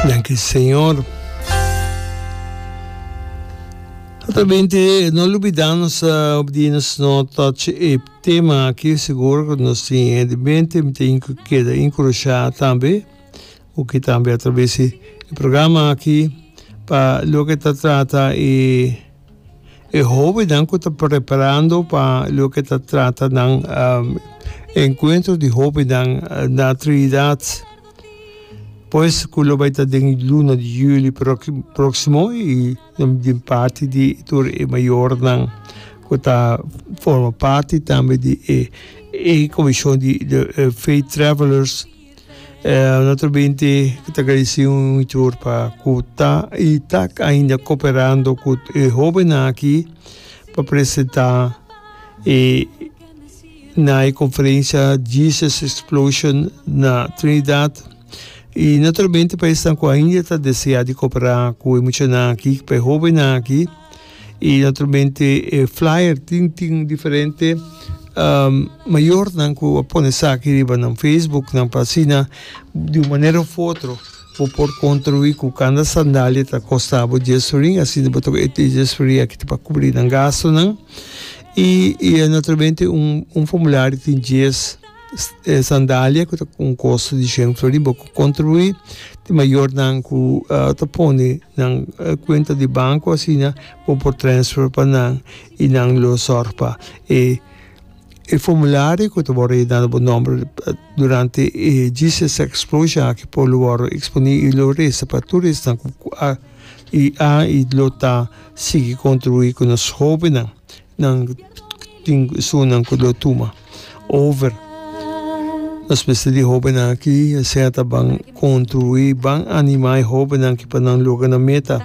Danki Señor. Ata bente, no lubida nos op di nos no touch e tema aki seguro ku nos tin e di bente mi tin ku keda enkurashá tambe ku ki tambe a traves di programa aki pa loke ta trata e E hóbennan ku ta preparando pa loke ta trata nan enkuentro di hóbennan na Trinidad, pues ku lo bai ta den e luna di juli próksimo i den parti di tur e mayornan ku ta forma parti tambe di e komishon di Faith Travelers. Otro binti cu ta agradeci un hitor pa cu ta y ta ainda cooperando cu e hobennan aki pa presenta na e conferencia Jesus Explosion na Trinidad y naturalmente pa esnan cu ainda ta desea di coopera cu e muchanan aki, cu e hobennan aki. y naturalmente e flyer tin tin diferente um mayornan cu a pone esaki riba nan Facebook nan pa asina di un manera of otro bo por contribui cu cada sandalia ta costabo dies sorin asina bo ta cu e dies sorin aki ta pa cubri nan gastonan y naturalmente un formulario tin dies E sandalia ku ta un kos di shen flori bo ku kontribuí di mayornan ku ta pone nan kuenta di banko asina bo por transfer pa nan i nan lo sòrg pa e e formulario ku ta wòrdu reda na bo nòmber durante e Jesus Explosion aki por lo wòrdu eksponí i lo resa pa tur esnan ku a i a i lo ta sigui kontribuí ku nos hobennan nan tin sunan ku lo tuma. over. Nos mester di hóbennan aki sea ta ban kontribuí, ban animá e hóbennan aki pa nan logra nan meta.